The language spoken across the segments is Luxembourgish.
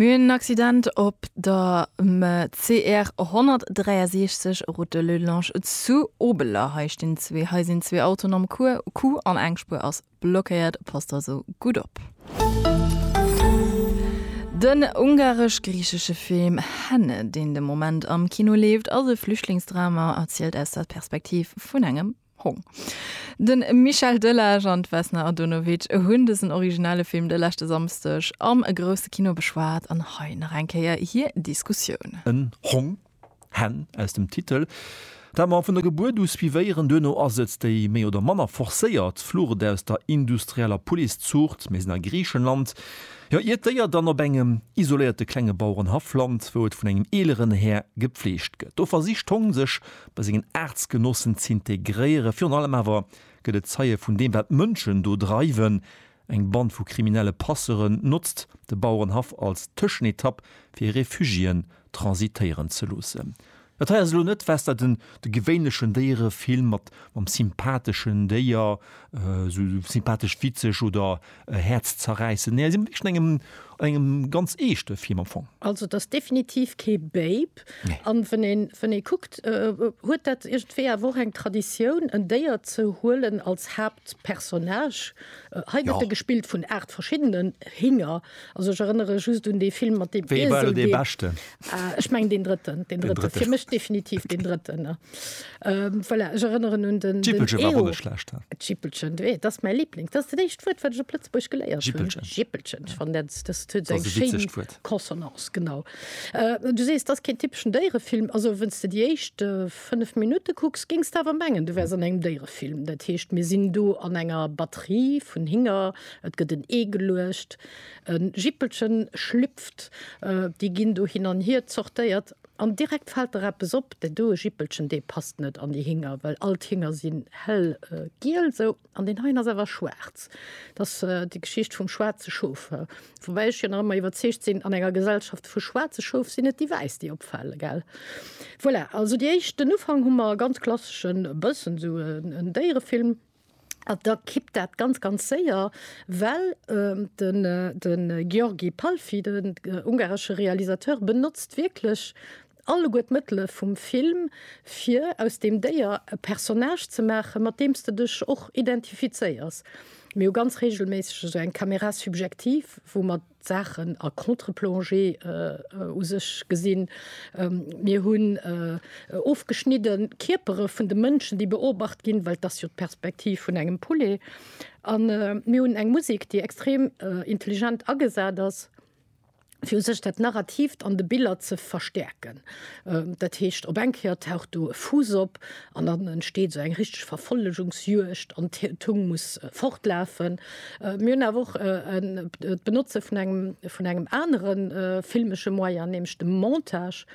Mir hunn en Accident op der CR 163, Route de Lelloulange zu Obeler. Hei stinn zwee, hei sinn zwee Autoen am Coup an eng Spuer ass blockéiert. Passt also gutt op. Den ungaresch-griichesche Film Henne, deen de Moment am Kino leeft, ass e Flüchtlingsdrama, erzielt aus der Perspektiv vun engem. Hong. De Michel Delage an d'Vesna Adonovic hunn dësen originelle Film de leschte Samsdeg am grousse Kino beschwat an hei nach eng Kéier hir Diskussioun. En Hong, Hen, aus dem Titel, dat mer vun der Gebuert u suivéieren. Duerno ass et déi méi oder manner forcéiert Flucht aus der industrieller Policëzuucht. Mir sinn a Griichenland, jo, ier d'Déier dann op engem isoléierte klenge Bauerenhaff lant, wou et vun engem eeleren Här gepfleegt gëtt. Do versicht d'Hong sech bei sengen Aartsgenossen z'integréieren. Virun allem awer gëtt et Zeie vun deem, wat d'Mënschen do dreiwen. Eng Band vu kriminelle Passeuren notzt de Bauerenhaff als Tëschenetapp, fir Refugiéen transitéieren ze loossen. Dat hei ass elo net wesder den de gewéinlechen Déierefilm mat mam sympatheschen Déier, esou sympathesch witzeg oder Häerzzerräissend, nee, si si wierklech an engem, an engem ganz eeschte Film am Fong. Also et ass definitiv kee Babe. Nee. An wann een, wann ee kuckt, huet dat iergendwéi awer och eng Traditioun, en Déier ze huelen als Haaptpersonnage. Hei gëtt e gespillt vun aacht verschiddenen Hinger. Also ech erënnere just un dee Film mat deem Iesel, dee. Wéi war elo dee beschten? Ech mengen deen drëtten, deen drëtten. Fir mech definitiv deen drëtten, ne. Voilà, ech erënneren un den Jippelchen war och net schlecht. Jippelchen, dat ass mäi Liblings. Dat ass dat éischt Wuert, wat ech op Lëtzebuergesch geléiert hunn. Jippelchen. Jippelchen. Ech fannen dat, dat huet esou eng schéin Consonance. Genau. Du sees, dat ass keen typeschen Déierefilm. Also wenn's de déi éischt 5 Minutte kucks, géings de awer mengen, du wäers an engem Déierefilm. Dat heescht, mir sinn do an enger Batterie vun Hinger, et gëtt en Ee geluecht, e Jippelchen schlüpft, déi ginn do hin an hier zortéiert. An direkt fällt der eppes op, deen doe Jippelchen, dee passt net an déi Hinger, well all d'Hinger sinn hell giel esou an deen heien ass awer schwaarz. Dat ass déi Geschicht vum schwaarze Schof. Woubäi ech jo nach ëmmer iwwerzeegt sinn, an enger Gesellschaft vu schwaarze Schof sinn et déi wäiss, déi opfale, gell? Voilà, also déi éischt, den Ufank hu mer e ganz klasseschen, e bëssen esou en Déierefilm, An da kippt dat ganz, ganz séier, well de György Palffy, den ungaresche Realisateur, benotzt wierklech alleguer d'Mëttele vum Film, fir aus deem Déier e Personnage ze maachen, mat deem s de dech och identifizéiers. Mir hu ganz reegelméisseg esou eng Caméra subjective, wou mer Saachen a Contre-plongée u sech gesinn. Mir hunn ofgeschnidde Kierpere vun de Mënschen, déi beobacht ginn, well et ass jo d'Perspektiv vun engem Poulet. A mir hunn eng Musek, déi extrem intelligent agesat ass, fir u sech dat Narrativt an de Biller ze verstäerken. Dat heescht, op eng Kéier taucht do e Fuuss op an dann entsteet esou eng richteg Verfollegungsjuegd an d'Hung muss fortlafen. Mir hunn awer och d'Benotze vun engem vun engem anere filmesche Moyen, nämlech dem Montage,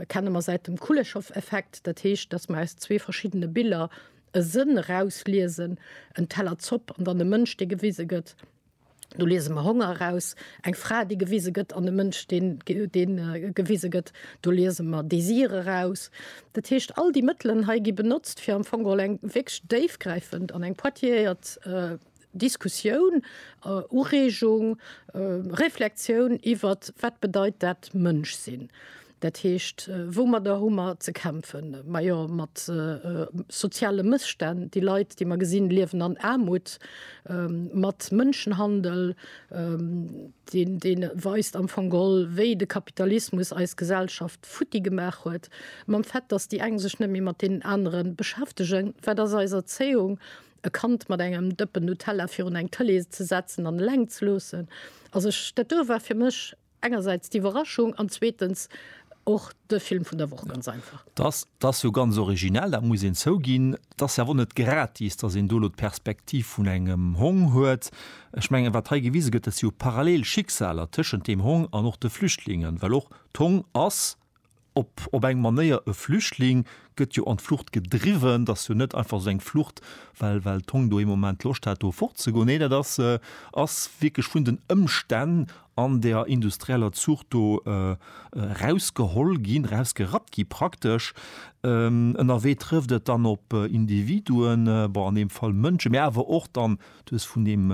kenne mer säit dem Kuleshov-Effekt. Dat heescht, datt mer aus zwee verschiddene Biller e Sënn erausliesen, en Teller Zopp an dann e Mënsch, dee gewise gëtt, do liese mer Honger eraus, eng Fra, déi gewise gëtt, an e Mënsch, dee gewise gëtt, do liese mer Desir eraus. Dat heescht, all déi Mëttelen hei gi benotzt, fir am Fong geholl eng wierklech déifgräifend an eng poitiéiert Diskussioun, Ureegung, Reflektioun iwwer wat bedeit dat Mënsch sinn, dat heescht, woumadder hu mer ze kämpfen, majo mat soziale Mësstänn, déi Leit, déi mer gesinn, liewen an Aarmut, mat Mënschenhandel, dee weist am Fong geholl, wéi de Kapitalismus eis Gesellschaft, futti gemaach huet, mam Fait, dass déi eng sech net méi mat deenen anere beschäftegen, wat ass eis Erzéiung? E Kand mat engem Dëppen Nutella virun eng Tëlee ze setzen an eleng ze loossen? Also ech, dat do war fir mech engersäits d'Iwwerraschung an zweetens och de Film vun der Woch, ganz einfach. Dass, dass jo ganz originell, dat muss een zouginn. Et ass jo awer och net gratis, dass een do elo d'Perspektiv vun engem Hong huet. Ech mengen, wat hei gewise gëtt, dat si jo parallel Schicksaler tëschent deem Hong an och de Flüchtlingen, well och D'Hong ass op op eng Manéier e Flüchtling, gëtt jo an d'Flucht gedriwwen. T'ass jo net einfach esou eng Flucht, well well d'Hong do ee Moment Loscht hat do fortzegoen. Nee, dat ass ass wierklech vun den Ëmstänn an der industrieller Zuucht do erausgeholl ginn, erausgerappt gi praktesch. Ënnerwee trëfft et dann op Individuen, bon an deem Fall Mënsche, mä awer och dann Du hues vun deem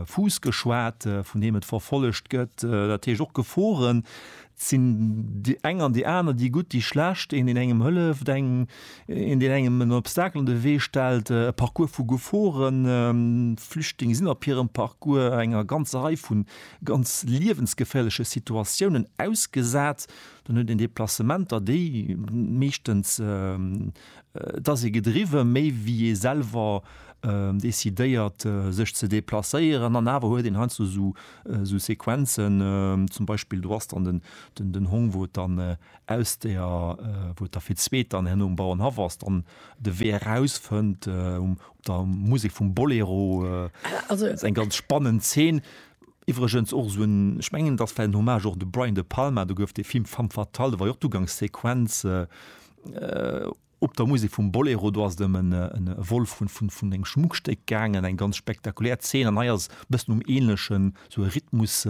Fuuss geschwat, vun deem et verfollegt gëtt, dat heescht och Geforen. Et sinn déi eng an déi aner, déi gutt, déi schlecht, een deen engem hëlleft, eng een deen engem en Obstacle an de Wee stellt, e Parcours vu Geforen. Flüchtling sinn op hirem Parcours enger ganzer Rei vu ganz liewensgeféierleche Situatiounen ausgesat. Dann huet een Deplacementer, déi meeschtens Et ass ee gedriwwe méi wéi ee selwer decidéiert sech ze deplacéieren an awer huet een heiansdo esou Sequenzen, zum Beispill do ass dann den Hong wou et dann aus der, wou et da fir d'zweet dann herno um Bauernhaff ass, dann de Wee erausfënnt op der Musek vum Bolero. Et ass eng ganz spannend Zeen. Iwwregens och esou en, ech mengen et ass vläicht en Hommage och u de Brian De Palma, do gouf dee Film Femme fatale, do war jo och d'Ugangssequenz, Op der Musek vum Bolero, do ass et ëm e Vol vun engem Schmuckstéck gaangen, eng ganz spektakulär Zeen. An hei ass e bëssen um Ähnlechen, sou e Rhythmus,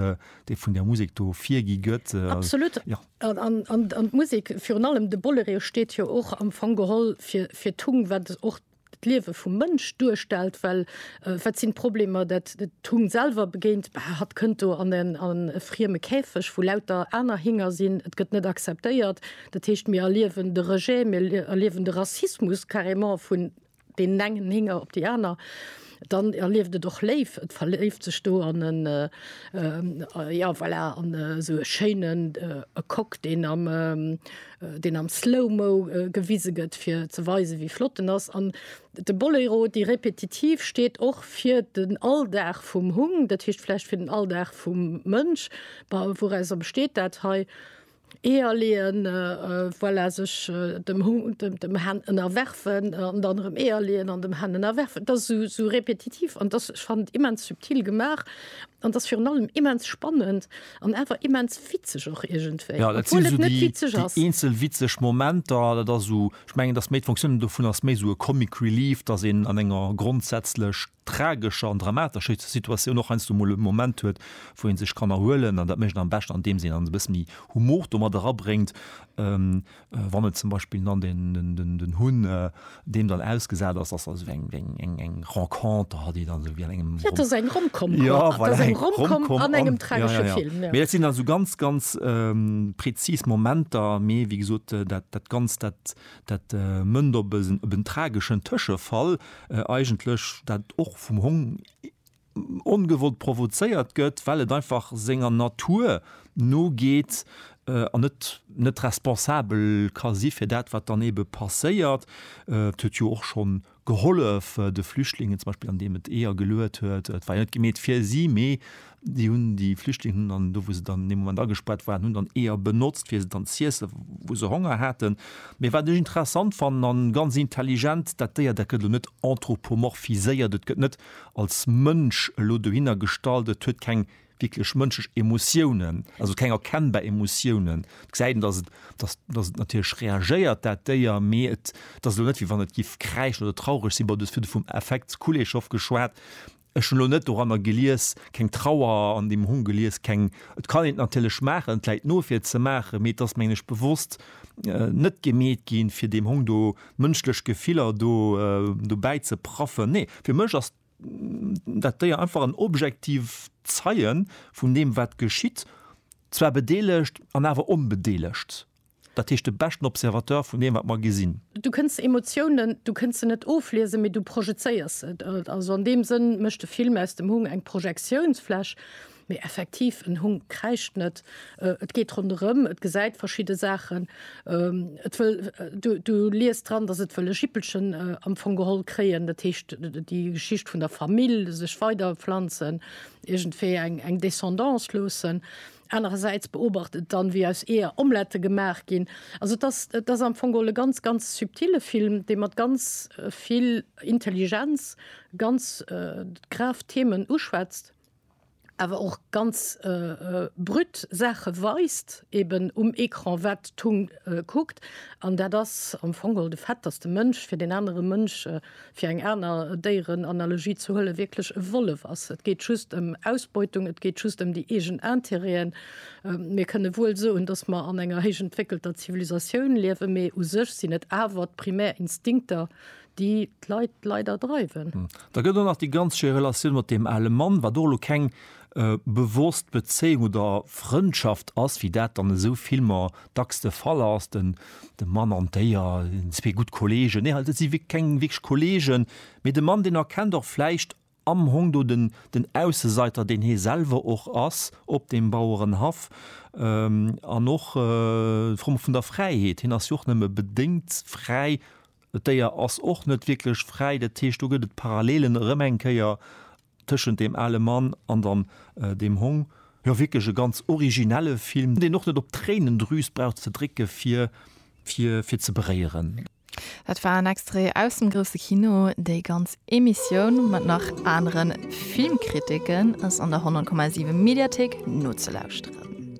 dee vun där Musek do virgi gëtt. Absolut. An d'Musek, virun allem de Bolereo, steet jo och am Fong geholl fir d'Tung, wat och d'Liewe vum Mënsch duerstellt, well wat sinn d'Problemer, dat d'Hung selwer begéint, Bah, hatt kënnt do an e frieme Käfeg, wou lauter aner Hinger sinn, et gëtt net acceptéiert. Dat heescht, mir erliewen de Rejet, mir erliewen de Rassismus carrément vun deenen engen Hinger op déi aner. Dann erlieft et och léif, et verléift sech do an en ja voilà an esou e schéinen e Coq, deen am deen am Slow-Mo gewise gëtt fir ze weisen, wéi flott en ass. An de Boléro, déi Repetitiv steet och fir den Alldag vum Hung, dat heescht vläicht fir den Alldag vum Mënsch. Wourauser besteet dat hei? Eeër leeën, voilà, sech dem Hund, dem Hen ënnerwerfen an dann erëm Eeër leeën an dem Hen ënnerwerfen. Et ass esou, esou repetitiv an dass, ech fannen et immens subtil gemaach an dass virun allem immens spannend an awer immens witzeg och iergendwéi, obwuel et net witzeg ass. Jo, dat sinn esou déi, déi eenzel witzeg Momenter. Dat ass esou, ech mengen, et ass méi, d'Fonctionne dovun ass méi esou e Comic Relief, dass een an enger grondsätzlech tragescher an dramatescher Situatioun och heiansdo emol e Moment huet, wou ee sech kann erhuelen. An dat mécht een am beschten, andeems een dann e bësse méi Humor do mat erabréngt, wann et zum Beispill dann den Hunn deem dann ausgesat ass, ass also eng eng Renconter hat, déi dann esou wéi an engem. Et ass eng Rom-Com, jo voilà, eng Rom-Com an engem tragesche Film. Mee dat sinn dann esou ganz, ganz prezis Momenter. Mee wéi gesot, dat Ganzt, dat Dat mënnt op en trageschen Tëschefall eigentlech, dat och vum Hong ongewollt provozéiert gëtt, well et einfach senger Natur nogeet an et net responsabel ka si fir dat, wat dann eebe passéiert. Et huet jo och schonn gehollef de Flüchtlingen zum Beispill an deem et Eeër geluet huet. Et war jo net gemeet fir si, mee déi hunn déi Flüchtling hunn dann do wou se dann an deem Moment agespaart waren, hunn dann Eeër benotzt fir se dann z'iessen, wou se Honger haten. Mee wat ech interessant fannen a ganz intelligent, dat Déier dat gëtt elo net anthropomorphiséiert, et gëtt net als Mënsch elo dohinner gestallt, et huet keng wierklech mënschlech Emotiounen, also keng erkennbar Emotiounen. Et gesäit een, dass et, dass, dass et natierlech reagéiert, dat Déier, mee et, et ass elo net, wéi wann et géif kräischen oder traureg sinn. Bon, du hues virdru vum Affekt Kuleshov geschwat. Ech hunn elo net doranner gelies, keng Trauer an deem Hong gelies, keng, et kann een et natierlech maachen, et läit no, fir et ze maachen, mee et ass, mengen ech, bewosst net gemeet ginn, fir deem Hong do mënschlech Gefiller do, dobäi ze praffen. Nee, fir mech ass. dat Déier einfach an objektiv Zeien vun deem wat geschitt, zwar bedeelegt an awer onbedeelegt, dat heescht de beschten Observateur vun deem wat mer gesinn. Du kënns Emotiounen, du kënns se net ofliesen, mee du projezéiers se. Also an deem Sënn mécht de Film aus dem Hung eng Projektiounsfläch. Mee effektiv, en Hung kräischt net. Et geet ronderëm, et gesäit verschidde Saachen, et wëll, du liest dran, datt et wëll e Jippelchen am Fong geholl kréien, dat heescht déi Geschicht vun der Famill, sech weiderpflanzen, iergendwéi eng Descendance loossen. Anerersäits beobacht et dann, wéi aus Eeër Omlette gemaach ginn. Also et ass am Fong geholl e ganz, ganz subtile Film, dee mat ganz vill Intelligenz ganz grav Themen uschwätzt. awer och ganz brut Saache weist, eben um Ecran, wat d'Tongue kuckt. An dat ass am Fong geholl de Fait, datt de Mënsch, fir deen anere Mënsch, fir eng aner Déierenanalogie ze huelen, wierklech e Wollef ass. Et geet just ëm Ausbeutung, et geet just ëm déi eegen Interêten. Mir kënne wuel soen, datt mer an enger héichentwéckelter Zivilisatioun liewen, mee u sech sinn et awer d'primär Instinkter, déi d'Leit leider dreiwen. Hm. Da gëtt och nach déi ganz schéi Relatioun mat deem ale Mann, wat och elo keng äh, bewosst Bezéiung oder Frëndschaft ass, wéi dat dann esou Filmer dacks de Fall ass, den, de Mann an d'Déier, zwee gutt Kollegen. Nee, dat si wierklech keng wierklech Kollegen, mee de Mann, deen erkennt och vläicht Am hong do den den Ausseseiter, deen hee selwer och ass, op deem Bauerenhaff. An och d'Fro vun der Fräiheet, hien ass jo och nëmme bedéngt fräi, d'Déier ass och net wierklech fräi. Dat heescht, do gëtt et Parallelen erëm eng Kéier tëschent deem ale Mann an dann deem Hong. Jo, wierklech e ganz originelle Film, deen och net op d'Tréinendrüs brauch ze drécke fir fir ze beréieren. Dat war en Extrait aus dem grousse Kino. Déi ganz Emissioun mat nach anere Filmkritiken ass an der 100,7 Mediathéik nozelauschteren.